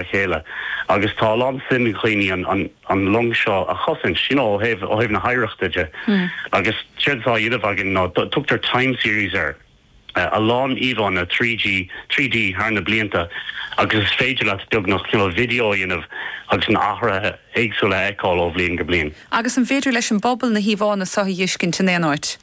a chéile. Agus tá a lán suim ag daoine an long seo a chosaint, you know, ó thaobh na hoidhreachta de. Agus séard atá á dhéanamh againn ná, tugtar time series air, a lán íomhánna 3G, 3D thar na blianta agus is féidir leat beagnach cineál videó a dhéanamh agus na hathruithe éagsúla a fheiceáil ó bhliain go bliain. Agus an féidir leis an bpobal na híomhánna seo a dh'fheiscint in aon áit?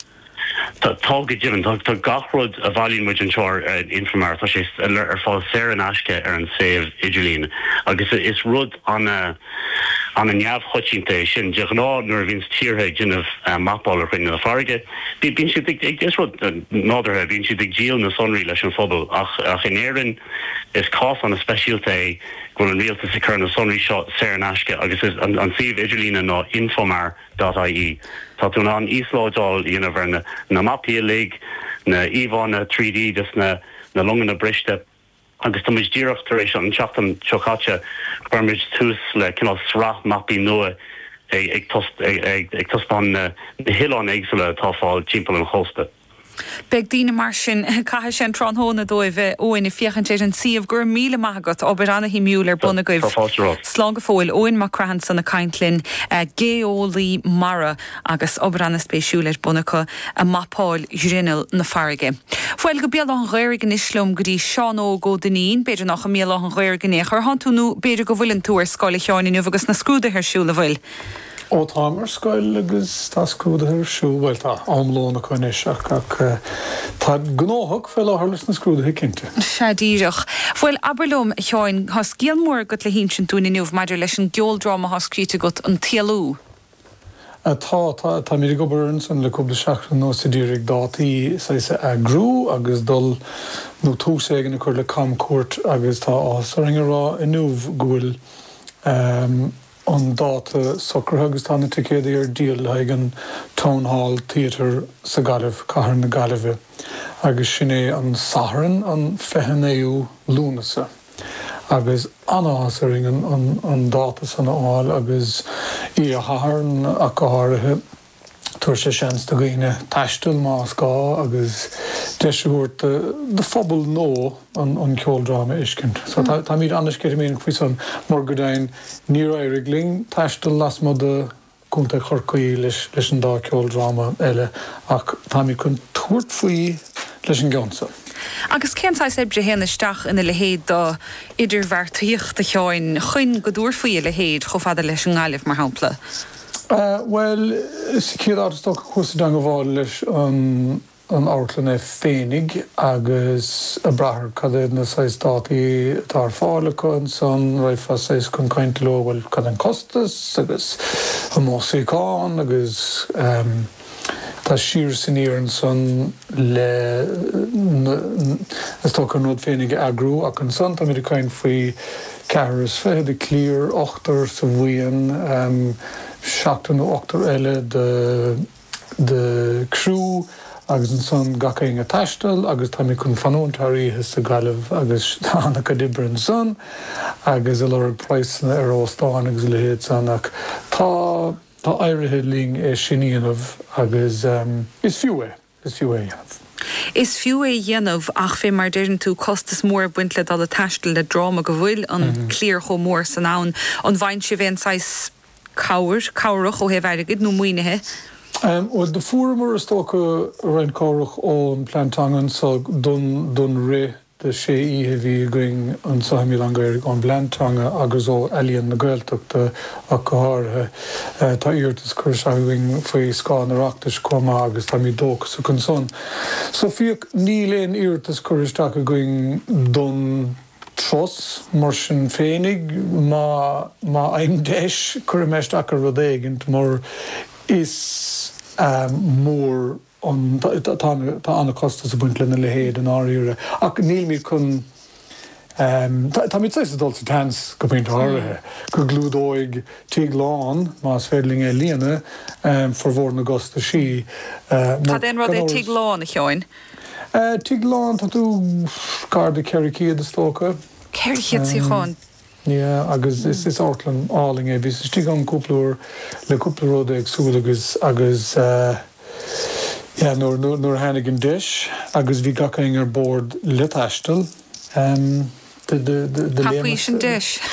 Tá, go deimhin. Tá gach rud a bhailíonn muid anseo ar Infomar, tá sé ar fáil saor in aisce ar an suíomh idirlín. Agus is rud an-neamhchoitianta é sin. De ghnáth nuair a bhíonns tíortha ag déanamh mapáil ar ghrinneall na farraige, bíonn siad ag, is rud nádúrtha, bíonn siad ag díol na sonraí leis an phobal. Ach in Éirinn, is cás an-speisialta é go bhfuil an rialtas ag cur na sonraí seo saor in aisce agus is, an suíomh idirlíne ná Infomar. dot ie. Tá tú in ann íoslódáil a dhéanamh ar na mapaí uilig, na íomhánna 3D de na longanna briste agus tá muid díreach tar éis, an tseachtain seo caite, chuir muid tús le cineál sraith mapaí nua ag taispeáint na hoileáin éagsúla atá fáil timpeall an chósta. Beidh daoine mar sin a chaithfidh an tráthnóna, a Eoin, ag féachaint ar an tsuíomh. Go raibh míle maith agat, obair ana-shuimiúil ar bun agaibh. Slán go fóill. Eoin Mac Craith san ag caint linn, geolaí mara agus obair ana-spéisiúil ar bun acu ag mapáil ghrinneall na farraige. Bhuel, go Béal Átha'n Ghaorthaidh anois liom go dtí Seán Óg Ó Duinnín. B'fhéidir nach i mBéal Átha'n Ghaorthaidh in aon chor a thánn tú nó b'fhéidir go bhfuileann tú ar scoil, a Sheáin, inniu agus na scrúduithe ar siúl, an bhfuil? Ó, táim ar scoil agus tá scrúduithe ar siúl, bhuel, tá am lóin acu anois ach tá gnóthach fé láthair leis na scrúduithe, cinnte. Sea, díreach. Bhuel, abair liom, a Sheáin, tá scéal mór agat le hinsint dúinn inniu maidir leis an gceoldráma atá scríte agat, An tÉalú. Sea, tá, tá, táimid ag obair ar an san le cúpla seachtain anuas a d'iarraidh dátaí, saghas, a eagrú agus dul, nó tús éigin a chur le camcuairt agus tá áthas orainn a rá inniu go bhfuil, eh, an dáta socraithe agus tá na ticéadaí ar díol le haghaidh an Town Hall Theatre sa Ghaillimh, Cathair na Gaillimhe, agus sin é an Satharn an 29ú Lúnasa. Agus an-áthas orainn an dáta san a fháil agus oíche Shathairn ach go háirithe. Tabharfaidh sé seans do dhaoine taisteal más gá agus deis a thabhairt do phobal nua an ceoldráma a fheiscint. So táimíd an-sceitimíní faoi san mar go deimhin níor éirigh linn taisteal lasmuigh de Contae Chorcaí leis an dá ceoldráma eile ach táimid chun tabhairt faoi leis an gceann so. Agus cén saghas oibre a théann isteach ina leithéid do idirbheartaíocht, a Sheáin, chuin go dtabharfá a leithéid chomh fada leis an nGaillimh, mar shampla? Bhuel, sa chéad áit, is dócha go bhfuil sé i dteangabháil leis an amharclann é féinig agus ag brath ar, cad é na saghas dátaí atá ar fáil acu ansan, raghfá saghas chun cainte leo, bhuel, cad é an costas agus an mó suíochán agus. Tá siar is aniar ansan le na Is dócha an rud féinig a eagrú ach ansan táimid ag caint faoi ceathrar is fiche de cliar, ochtar sa bhuíon, seachtar nó ochtar eile de criú agus ansan gach aon ag taisteal agus táimid chun fanúint thar oíche sa Ghaillimh agus tá an-chuid oibre ansan agus ag lorg praghsanna ar óstáin agus a leithéid san ach tá Tá éirithe linn é sin a dhéanamh agus is fiú é, is fiú é a dhéanamh. Is fiú é a dhéanamh ach fé mar a deireann tú, costas mór ag baint le dul ag taisteal le dráma go bhfuil an cliar chomh mór san ann. An bhfaigheann sibh aon saghas cabhair, cabhrach ó thaobh airgid nó maoinithe? Bhuel, do fuaireamar is dócha roinnt cabhrach ón Plean Teanga anso don rith. de sé oíche a bhí againn anso i mBéal Átha an Ghaorthaidh ón bplean teanga agus ó Ealaíon na Gaeltachta ach go háirithe. Tá iarratas curtha isteach againn faoi scáth an Oireachtais chomh maith agus táimid dóchasach ansan. So fiú níl aon iarratas curtha isteach againn don turas, mar sin féinig, má má fhaighim deis cuirfidh mé isteach ar rud éigint mar is mór. Tá an-chostas ag baint lena leithéid, i ndáiríre, ach nílimid chun. Táimid saghas ag dul sa tseans, go pointe áirithe, go gclúdóidh tigh lán, más féidir linn é a líonadh, formhór na gcostaisí. Cad é an rud é tigh lán, a Sheáin? Tigh lán, tá tú gar do cheithre chéad, is dócha. Ceithre chéad suíochán? Yeah agus is is amharclann álainn é. Bhíos istigh ann cúpla uair le cúpla rud éagsúil agus agus eh yeah nuair nuair nuair a tháinig an deis agus bhí gach aon ar bord le taisteal ehm do do do do léimeas Thapaís an deis.